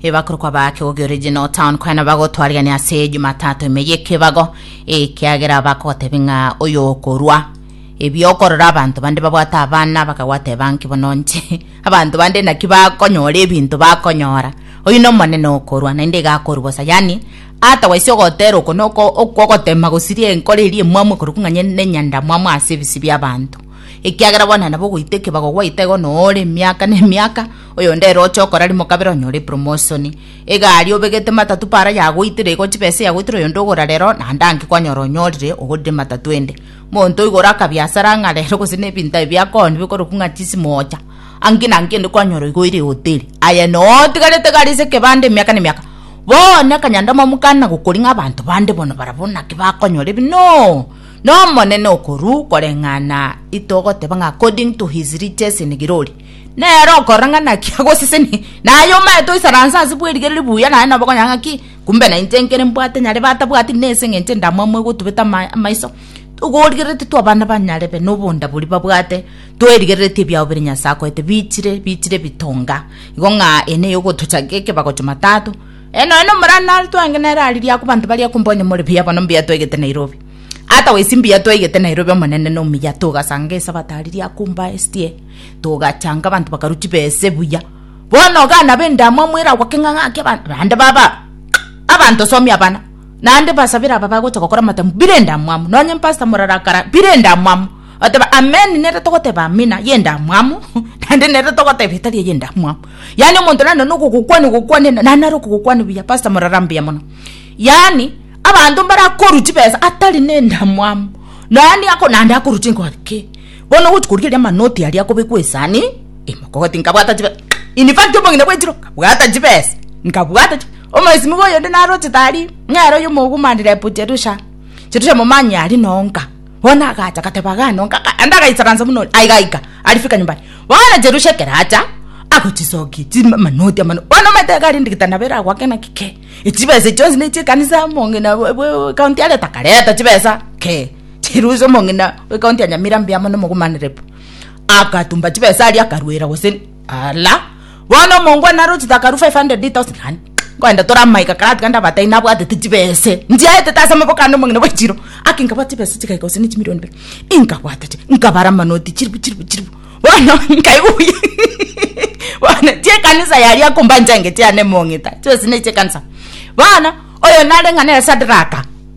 ebakorokwa ba Kegogi Original Town kwena bagotwariania ase Jumatatu ime y'ekebago ekiagera bakogotebia ng'a oyo okorwa ebi okorora abanto bande babwate abana bakagwateba nki bono nche abanto bande naki bakonyora ebinto bakonyora oyu nomonene okorwa naende iga akorwa bosa yani ata gwaise ogotera oko noko okogotema gosiria enkoro eria emwamu ekorokwa ng'a nye- nenyanda mwamu ase ebisi biabanto ekiagera bono nabo ogoita ekebago gwaita igo noore emiaka na emiaka Oyonde ere oche okora rimo kabere onyore epromosoni. Egari obegete matatu para yagoitire igo chibesa eyagoitire oyonde ogora rero naende anki kwanyora onyorire ogorire matatu ende. Monto oigora akabiasara ng'a rero gose na ebinto ebi biakooni bikorokwa ng'a chisimo ocha. Anki na anki ende kwanyora igo oire ehoteri. Aye noo otigarete egari ase ekebanda emiaka na emiaka. Bono ekanyanda momokani na gokori ng'a abanto bande bono barabwo naki bakonyora ebi noo na Omonene okorwa koreng'ana itogoteba ng'a according to his riches in glory. Nere okorora ng'a naki agosesenia, na aye omaete oisaransa ase bw'erige riria ribuya, naye noboke onyore ng'aki, kumbe nainche nkere mbwate nyare batabwati na ense engencho ende amamwe gotubete ama- amaiso. Togorigereretie twa abana ba nyarebe na obonda boria babwate, twerigereretie ebiao biria Nyasae akoete bichire bichire ebitonga, igo ng'a eye neye ogotochaka ekebago Jumatatu. Eye nonya nomorana are twenge nere ariria akwa abanto baria akumba onye more buya bono mbuya twaigete Nairobi. Otherwise mbuya twaigete Nairobi omonene na omuya togasanga esabato ariria akumba estie. Togachanga abanto bakarwa chibese buya. Bono ogana b'endamwamu eragwake ng'a ng'ake abanto naende baba abanto some abana naende basabere aba bagocha gokora amatambe bire endamwamu nonye mpastor morarakara bire endamwamu oteba amen nere togoteba amina y'endamwamu naende nere togoteba etari eye endamwamu yaani omonto nare nonye ogogokwania ogokwania naende nare okogokwania buya pastor morara mbuya mono yaani abanto mbarakorwa chibesa atari na endamwamu naende ako naende akorwa chinkoro ki. Bono ogochi koria eria amanoti aria akobekwa esani ime, kogati nkabwata chibesa, in fact omong'ina bw'echiro nkabwata chibesa, nkabwata chi omoesimigwa oyonde narochete aria, nere oyo omogumani rep Jerusha, Jerusha momanyi aria noo nka, bono agacha agateba iga noo nka, naende agaisaransa buna ore, aye gaika arifika nyumbani, bono Jerusha ekero acha agochisokia chi amanoti amanoti, bono omanyete iga rende gete nabo eragoake naki kei, echibesa echi chionsi ne echie ekanisa omong'ina bwe bwe county areta akareta chibesa kei. Chirusi omong'ina w'ekaunti ya Nyamira mbuya mono omogumanerebu, akatumba chibesa aria akarwera gose ala bono omongwana naro chitakaru 500,000 rand nkoenda tore amaika karatiga ndabataini nabwatete chibesa nchiaete tase amaboko ande omong'ina bwechiro aki nkabwate chibesa chigaika gose ne chimilioni ibere inkabwata chi nkabara amanoti chiribu chiribu chiribu bono nkaigwa buya bono chia ekanisa yaria akomba nchangete yane emong'ita chibesa na echi'ekanisa bono oyo nare ng'a nere Sadraka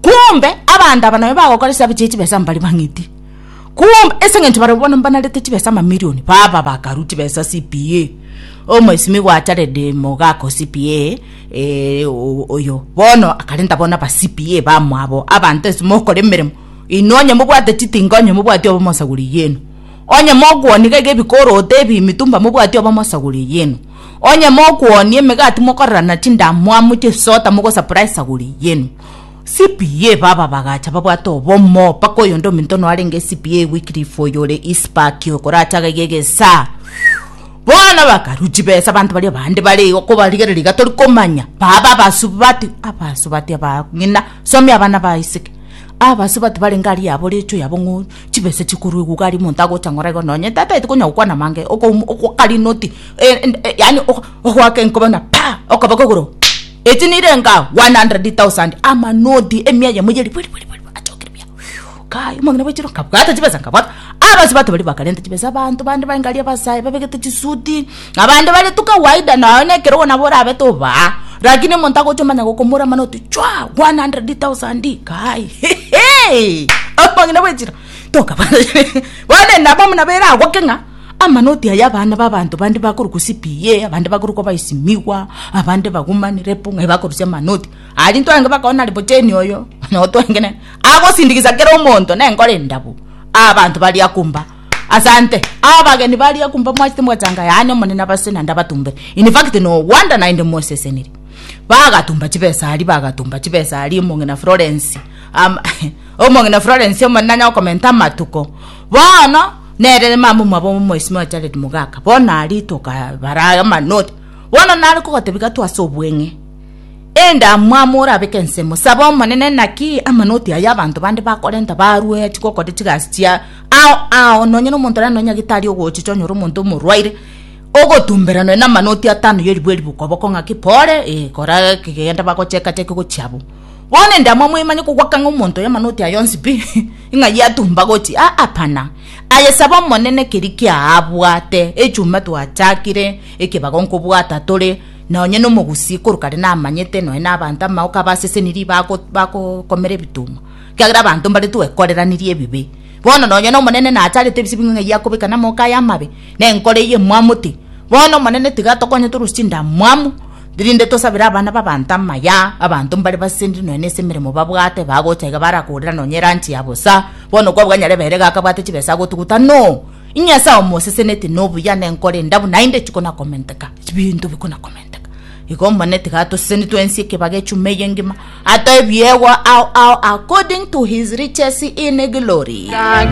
Kwombe abanto aba nabio bagokora ase abache chibesa mbare bang'iti, kwombe ase engencho barabwo bono mbanarete chibesa amamirioni baba bakaru chibesa CPA omoisimi gwa Jared Mogaka o CPA eh, o- oyo bono akarenta bono aba CPA bamwabo abanto ase mokora emeremo inwe onye mobwate chitinga onye mobwati obo mosagure eyieno onye mokwonia gaiga ebikoroto ebi mitumba mobwati obo mosagure eyieno onye mokwonia emegati mokorerana chindamwamu chisota mogosupply esaguri eyieno. CPA baba bagacha babwate obomo mpaka oyonde ominto noarenge CPA Wycliffe oyo ore Ispak okoracha agaiga egesaa bono bakaru chibesa abanto baria bande bare igo kobarigerera iga tori komanya baba abasubati abasubati aba ng'ina somia abana ba Isaac abasubati barenge aria yabo recho yabo ng'o chibesa chikorwa eguga aria omonto agocha ng'ora igo nonye tataeti konya gokwana mange okoum okokarina oti eh, eh, yaani ok- ogoaka enkoba buna pa okaba kogoro Eti nirenga 100,000 amanoti emia yamo ye ribwe ribwe ribwe ribwe achokire buya Whew, kai omong'ina bwa echiro nkabwata chibesa nkabwata abanto bato baria bakarenta chibesa abanto bande baigaria abasae babegete chisuti abande bare tu kawaida nonya na ekerogo nabo orabe tobaa lakini omonto agocha omanya gokomora amanoti chwaa 100,000 kai heheei omong'ina bwa echiro tokabwata bono nabo nabo eragoke ng'a. Amanoti aya abana b'abanto bande bakorokwa CPA, abande bakorokwa abaesimigwa, abande bagumani, repu, ng'ai bakorusia amanoti aria intwe aenge bakona nari bocheni oyo noo twengenene agosindikisa kera omonto nenkoro endabu abanto bari akumba asante abageni bari akumba mwachete mwachanga yaani omonene abase naende abatumbe in fact noo Wanda naende mosesenirie bagatumba chibesa aria bagatumba chibesa aria omong'ina Florence ama omong'ina Florence omonene nanyakogomenta amatuko bono. Nere mama omwabo omoisimi o Jaredi mogaka, bono aria tokabara amanoti. Bono nare kogotebia gatwe ase obweng'e, Enda amwamo orabeke ensemo, saba Omonene, naki amanoti ayio abanto bande bakorenta barue chigokore chigasi chiaye, ao ao nonye nomonto nande nonyagete aria ogochicha onyore omonto omorwaire, ogotumberanwe namanoti atano y'eribu eribu okoboko ng'aki, Pole, ee, kora gaki, genda bagocheka-cheke gochia abwo. Bono enda amwamo oimanye kogwakang'a omonto oyo amanoti ayio onsi pi. Ng'ai atumba gochi? Aa, pana! Aye saba Omonene keria kiaabwate, echumba twachakire ekebago nkobwata tore, na onye nomogusii korokare namanyete nonya nabanto amaoka abasesenirie bagokomera ebituma, ekiagera abanto mbare twekoreranirie ebibe. Bono nonya n'Omonene nachagete ebise bing'we ng'ai akobeka namaoka aye amabe? Nenkoro eye emwamoti? Bono, Omonene, tiga tokonye toruse chindamwamu, Rinde tosabire abana b'abanto amaya, abanto mbare basesenire nonya nase emeremo babwate, bagocha iga barakorera nonya eranchi ya bosa. Bono okwa bwa Nyarebeire iga akabwate chibesa agotuguta, No! Inyasae omoseseneti nobuya nenkore enda buna inde chikonakomenteka, chibinto bikonakomenteka. Igo omone tiga atoseseni twensi ekebago echuma eye engima, atoe ebiegwa ao ao according to his riches in glory.